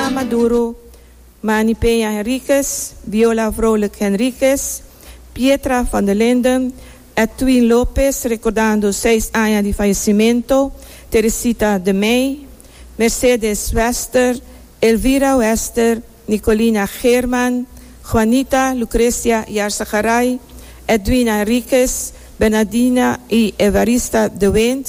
Nicolás Maduro, Manny Peña Henriquez, Viola Vrolijk Henriquez, Pietra van der Linden, Edwin Lopez recordando seis aña di fallecimento, Teresita de Mey, Mercedes Wester, Elvira Wester, Nicolina Geerman, Juanita Lucrecia Yarzagarray, Edwina Henriquez, Bernardina y Evarista de Wint.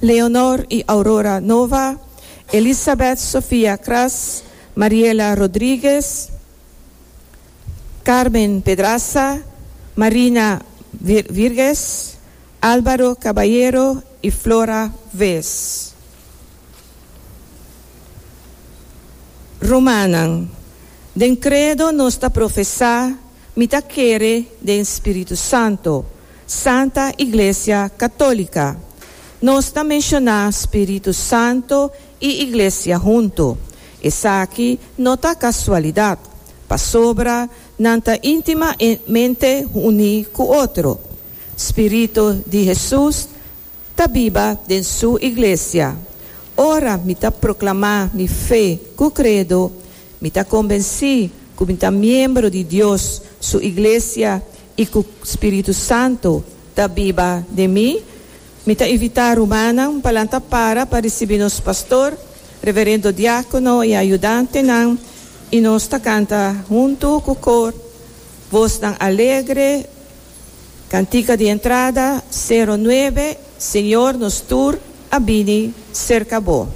Leonor y Aurora Nova, Elisabeth Sofia Kras, Mariela Rodriguez, Carmen Pedraza, Marina Virges, Alvaro Caballero y Flora Wees. Rumannan, den credo nos ta profesá. Mi ta kere den Spiritu Santo, Santa Iglesia Católica. Nos ta menciona Spiritu Santo y Iglesia hunto. Esaki no ta casualidad, pasobra nan ta intimamente uní cu otro. Spiritu di Jesús. Ta biba den su iglesia. Ora mi ta proclamá mi fe cu credo, mi ta convencí cu mi ta miembro di Dios su iglesia i cu Spiritu Santo ta biba den mi. Mi ta invitá rumannan pa lanta para pa ricibi nos pastor, reverendo diácono i ayudantenan i nos ta canta huntu cu cor, voznan alegre. Cantica di entrada, Sero nuebe, Señor, nos tur a bini cerca Bo.